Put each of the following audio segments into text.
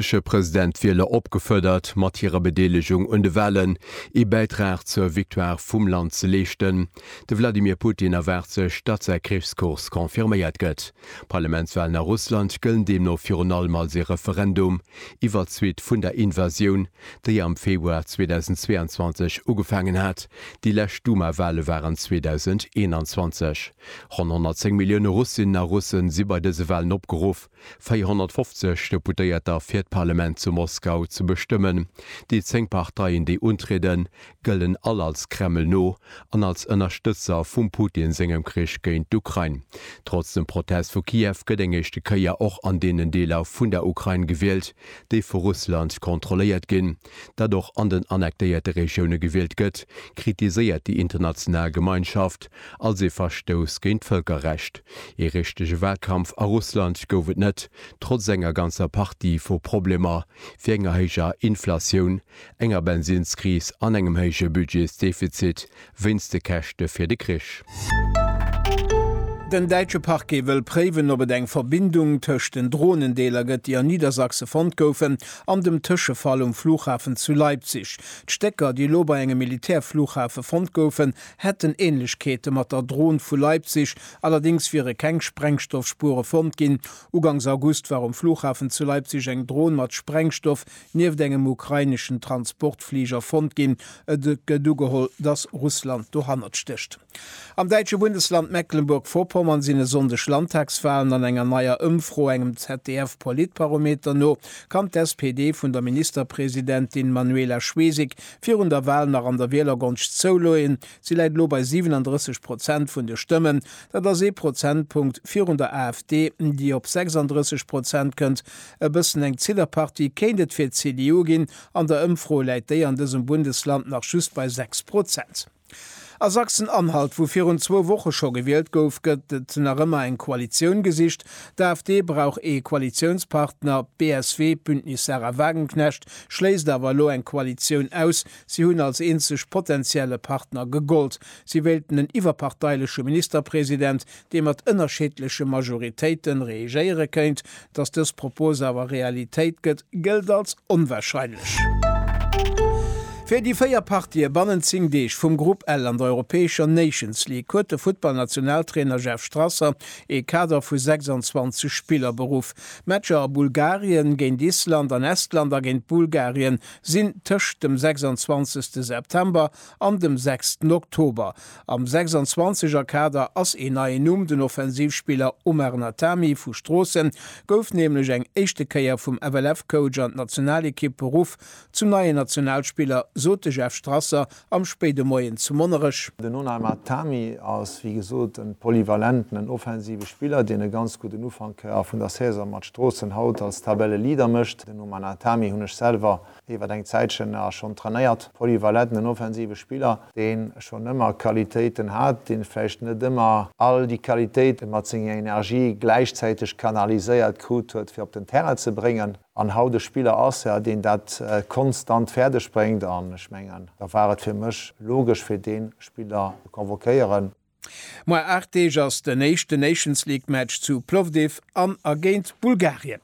franséische President d'Wieler opgefuerdert, mat hirer Bedeelegung un de Wahlen ee Bäitrag zur Victoire vum Land ze leeschten. De Wladimir Putin erwaart sech, datt säi Krichskurs confirméiert gëtt. Parlamentswahlen a Russland gëllen deemno virun allem als ee Referendum iwwert d'Suite vun der Invasioun, déi am Februar 2022 ugefaangen hat. Déi lescht Duma-Wahle waren 2021. Ronn 110 Millioune Russinnen a Russen si bei dëse Wahlen opgeruff. 450 Deputéierter fir d'Parlement zu Moskau ze bestëmmen. Déi 10 Parteien déi untrieden, gëllen all als Kreml no an als Ënnerstëtzer vum Putin sengem Krich géint d'Ukrain. Trotz dem Protest vu Kiew gëtt eng éischte Kéier och an deenen Deeler vun der Ukrain gewielt, déi vu Russland kontrolléiert ginn. dat och an den annektéierte Regioune gewielt gëtt, kritiséiert déi international Gemeinschaft als ee Verstouss géint d'Vëlkerrecht. Ee richtege Walkampf a Russland gouf et net, trotz enger ganzer Partie vu Problemer, wéi enger héijer Inflatioun, enger Bensinnskris an engem héije Budgetsdefizit, wéinst de Käschte fir de Krich. Den däitsche Parquet wëll préiwen, ob et eng Verbindung tëscht den Dronen-Deeler gëtt, déi a Niedersachse fonnt goufen, an dem Tëschefall um Flughafen zu Leipzig. D'Stécker, déi elo bei engem Militärflughafe fonnt goufen, hätten Änlechkeete mat der Dron vu Leipzig, allerdéngs wiere keng Sprengstoffspuere fonnt ginn. Ugangs August war um Flughafen zu Leipzig eng Dron mat Sprengstoff Nieft engem ukraineschen Transportfliger fonnt ginn. Et gëtt ugeholl, dass Russland dohannert stécht. Am däitsche Bundesland Mecklenburg-Vorpommern sinn e Sonndeg Landtagswalen. An enger neier Ëmfro, engem ZDF-Politbarometer no, kann d'SPD vun der Ministerpresidentin Manuela Schwesig virun der Wal nach an der Wielergonscht zouloeen. Si läit elo bei 37 Prozent vun de Stëmmen. Dat ass ee Prozentpunkt virun der AfD, déi op 36 Prozent kënnt. E bëssen eng Zillerpartie kéint et fir d'CDU ginn. An der Ëmfro läit déi an dësem Bundesland nach just bei 6 Prozent. A Sachsen-Anhalt, wou virun zwou Woche scho gewielt gouf, gëtt et nach ëmmer eng Koalitioun gesicht. D'AfD brauch ee Koalitiounspartner. D'BSW, Bündnis Sarah Wagenknecht, schléisst awer elo eng Koalitioun aus. Si hunn als eenzeg potentielle Partner gegollt. Si wéilten en iwwerparteileche Ministerpresident, dee mat ënnerscheedleche Majoritéite reegéiere kéint. Datt dës Propos awer Realitéit gëtt, gëllt als onwarscheinlech. Fir déi véier Partië bannent zéng Deeg vum Grupp L an der europäescher Nations League huet de Futtballnationaltrainer Jeff Strasser ee Kader vu 26 Spiller beruff. D'Matcher a Bulgarien, géint Island, an Estland a géint Bulgarien sinn tëscht dem 26 September An dem sechsten Oktober. Am 26 er Kader ass een neien Numm, den Offensivspiller Omar Natami vu Stroossen gouf nämlech eng éischte Kéier vum FLF-Coach an d'Nationalekipp beruff. Zum neien Nationalspiller sot de Jeff Strasser am spéide Moien zu Monnerech. Den Onar Natami ass wéi gesot en polyvalenten, en offensive Spiller, deen e ganz gudden Ufank vun der Saison mat Stroossen haut als Tabelleleader mécht. Den Omar Natami hunn ech selwer Iwwert eng Zäitchen nach schonn trainéiert. Poly war letten, en offensive Spiller, deen schonn ëmmer Qualitéiten hat, deen vläicht net ëmmer all déi Qualitéiten mat senger Energie gläichzäiteg kanaliséiert krut huet fir op den Terrain ze bréngen, an haut e Spiller ass, jo, deen dat konstant fäerdeg bréngt. An ech mengen, da war et fir mech logesch fir dee Spiller ze convoquéieren. Moar 8 Deeg ass den éischte Nations League Match zu Plovdiv an a géint Bulgarien.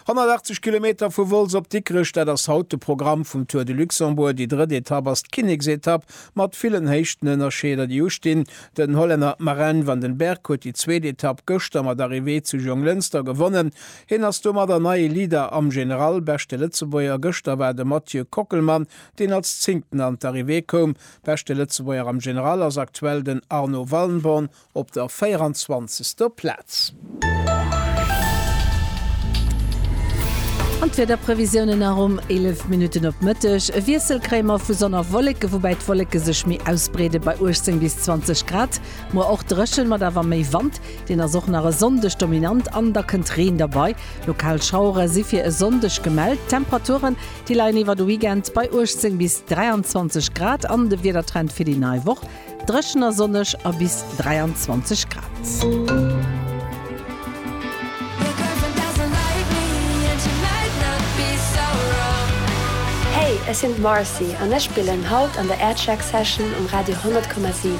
180 Kilometer vu Wolz op Dikrech, dat ass haut de Programm vum Tour de Luxembourg. Déi drëtt Etapp ass d'Kinneksetapp mat villen Héichtenënnerscheeder, déi ustinn. Den Hollänner Marin van den Berg huet déi zweet Etapp gëschter mat Arrivée zu Jonglënster gewonnen. Hien ass domadder neie Leader am General. Beschte Lëtzebuerger gëschter war de Mathieu Kockelmann, deen als Zéngten an d'Arrivée koum. Beschte Lëtzebuerger am General ass aktuell den Arno Wallenborn op der 24. Plaz. An d'Wiederprevisiounen nach um 11 Minutten op Mëtteg. E Wiessel kréie mer vu Sonn a Wolleke, woubäi d'Wolleke sech méi ausbreede bei 18 bis 20 Grad. Muer och dréchen, mat awer méi Wand. Deen ass och nach e Sonndeg dominant an da kënnt Reen derbei. Lokal Schauere si fir e Sonndeg gemellt. D'Temperature Déi leien iwwer de Weekend bei 18 bis 23 Grad an de Wiedertrend fir déi nei Woch, Dréchen a sonneg a bis 23 Grad. Hey, ech sinn d'Marcy an ech spillen haut an der Aircheck Session um Radio 100,7.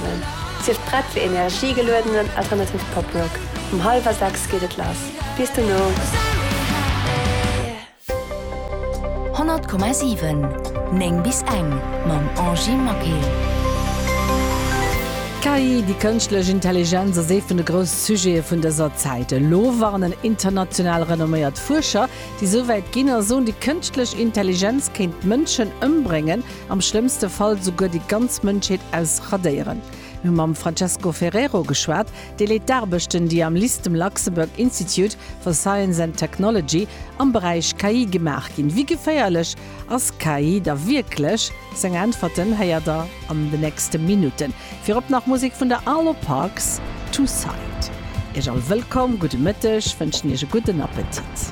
Sief prett fir energiegeluedenen alternative Pop Rock. Um hallwer 6 geet et lass. Bis dono! 100,7 9 bis eng mam Angie Maquet. D'KI, déi kënschtlech Intelligenz, ass ee vun de grousse Sujete vun dëser Zäit. Elo warnen international renomméiert Fuerscher, déi esou wäit ginn a soen, déi kënschtlech Intelligenz kéint d'Mënschen ëmbréngen, am schlëmmste Fall esouguer déi ganz Mënschheet ausradéieren. Mir hu mam Francesco Ferrero geschwat. Dee leet d'Aarbechten, déi am Listem Luxembourg Institute for Science and Technology am Beräich KI gemaach ginn. Wéi geféierlech ass KI da wierklech? Seng Äntwerten héiert der an de nächste Minutten. Virop nach Musek vun der Arlo Parks, Two Side. Iech all wëllkomm, gudde Mëtteg, wënschen Iech e gudden Appetit.